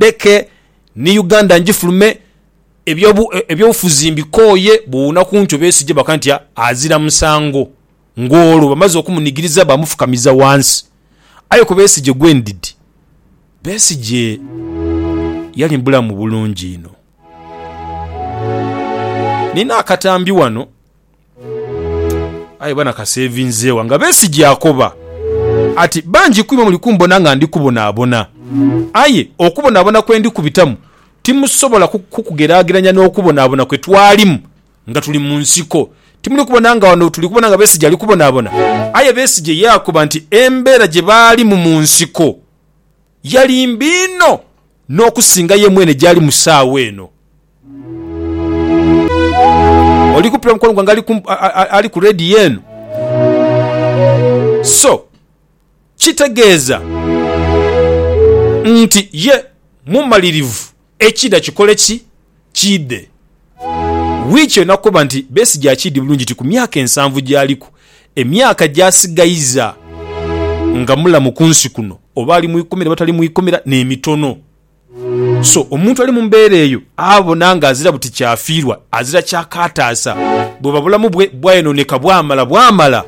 Ndheke ni Uganda ngifulume, eby'obufuzi mbikooye, bw'owuuna ku nkyo beesigye baka nti azira musango. Ng'olwo bamaze okumunigiriza baamufukamiza wansi. Aye ku Besigye gwendidi, Besigye yali mubulamu bulungi inho. Nina akatambi wano Aye bana kaseevinzeewa nga Besigye akoba ati, Bangi kwimwe muli kumbona nga ndi kubonaabona. Aye okubonaabona kwe ndi kubitamu timusobola kukugeraageranya n'okubonaabona kwe twalimu nga tuli mu nsiko. Timuli kubona nga wano tuli kubona nga Besigye ali kubonaabona? Aye Besigye yaakoba nti embeera gye baalimu mu nsiko, Yali mbi inho n'okusinga ye mwene gy'ali mu saawa eno. Oli kumpi na mukwano gwange ali ku leediyo eno? So, kitegeeza nti ye mumalirivu Ekiidha kikole ki? Kiidhe wiiki yona kuba nti Besigye akiidhi bulungi nti ku myaka ensanvu gyaliku, emyaka gy'asigaiza nga mulamu ku nsi kuno, oba ali mu ikomera oba tali mu ikomera, n'emitono. So omuntu ali mu mbeera eyo abona nga azira buti kyafiirwa, azira ky'akaataasa bwoba bulamu bwe bwayonooneka bwamala bwamala.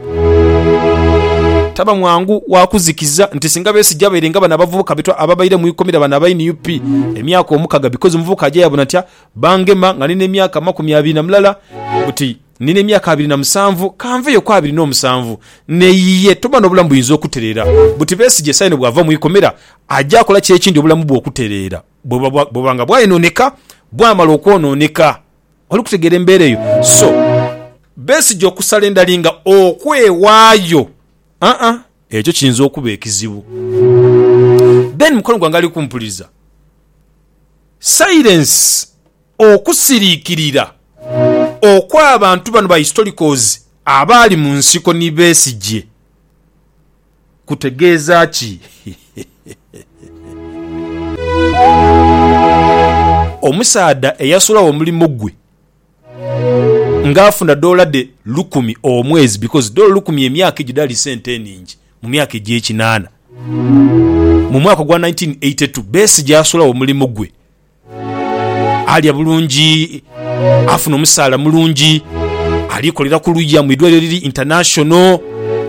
Taba mwangu wa kuzikiza nti singa Besigye abaire nga bano abavubuka betwa ababaire mu ikomera bano aba nup emyaka omukaga bikozi omuvubuka aja yabona ntya bangema nga nina emyaka amakumi abiri na mulala buti nina emyaka abiri na musanvu kanveyo ku abiri n'omusanvu neyiye toba n'obulamu buyinza okutereera buti Besigye saino bwava mu ikomera aja akola ki ekindi obulamu bwe okutereera bwebuba nga bwayonooneka bwamala okwonooneka. Oli kutegeera embeera eyo? So, Besigye okusala endali nga okwewaayo, aa, ekyo kiyinza okuba ekizibu. Ben, mukwano gwange ali kumpuliriza, silence, okusiriikirira okw'abantu bano ba historicals abaali mu nsiko ni Besigye, kutegeeza ki? Omusaadha eyasulagho omulimo gwe nga afuna doola dhe lukumi omwezi because doola lukumi emyaka egyo dhaali sente enhingi mu myaka egy'ekinaana. Mu mwaka ogwa nineteen eighty two, Besigye asulagho omulimo gwe. Alya bulungi, afuna omusaala mulungi, ali kolera ku luya mu idwaliro eriri International,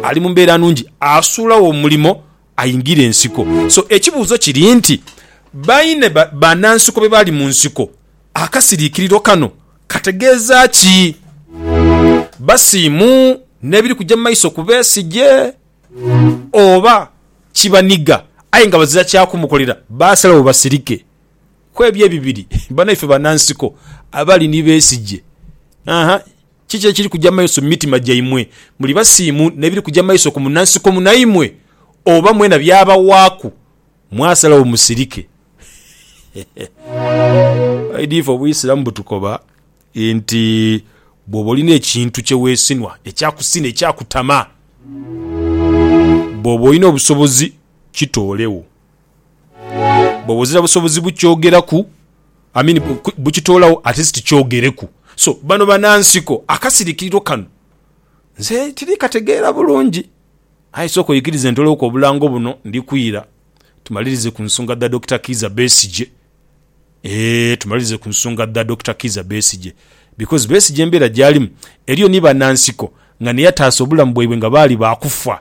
ali mu mbeera nungi, asuulagho omulimo aingire ensiko. So ekibuuzo kiri nti, baine banansiko be bali mu nsiko? Akasiriikiriro kano kategeeza ki? Basiimu n'ebiri kuja mu maiso ku Besigye? Oba kibaniga aye nga bazira kya kumukolera, baasalagho basirike? ku ebyo ebibiri banaife banansiko abali ni besigye? Aha, kiki ekiri kuja mu maiso mu mitima gyaimwe? Muli basiimu n'ebiri kuja mu maiso ku munansiko munaimwe? Oba mwena byabawaaku mwasalagho musirike? Aidha ife Obuisiramu butukoba nti bw'oba olina ekintu kye weesinwa, ekyakusina, ekyakutama, bw'oba olina obusobozi kitoolegho. Bwoba ozira busobozi bukyogeraku I mean bukitoolawo at least kyogereku. So bano banansiko akasirikiriro kano nze tirikategeera bulungi aye sooka oyikirize ntolewoku obulango buno ndikwira tumalirize ku nsonga dha Dokita Kiiza Besigye eeh tumalirize ku nsonga dha Dokita Kiiza Besigye because Besigye embeera gyalimu eriyo ni banansiko nga naye ataasa obulamu bwaibwe nga baali baakufa.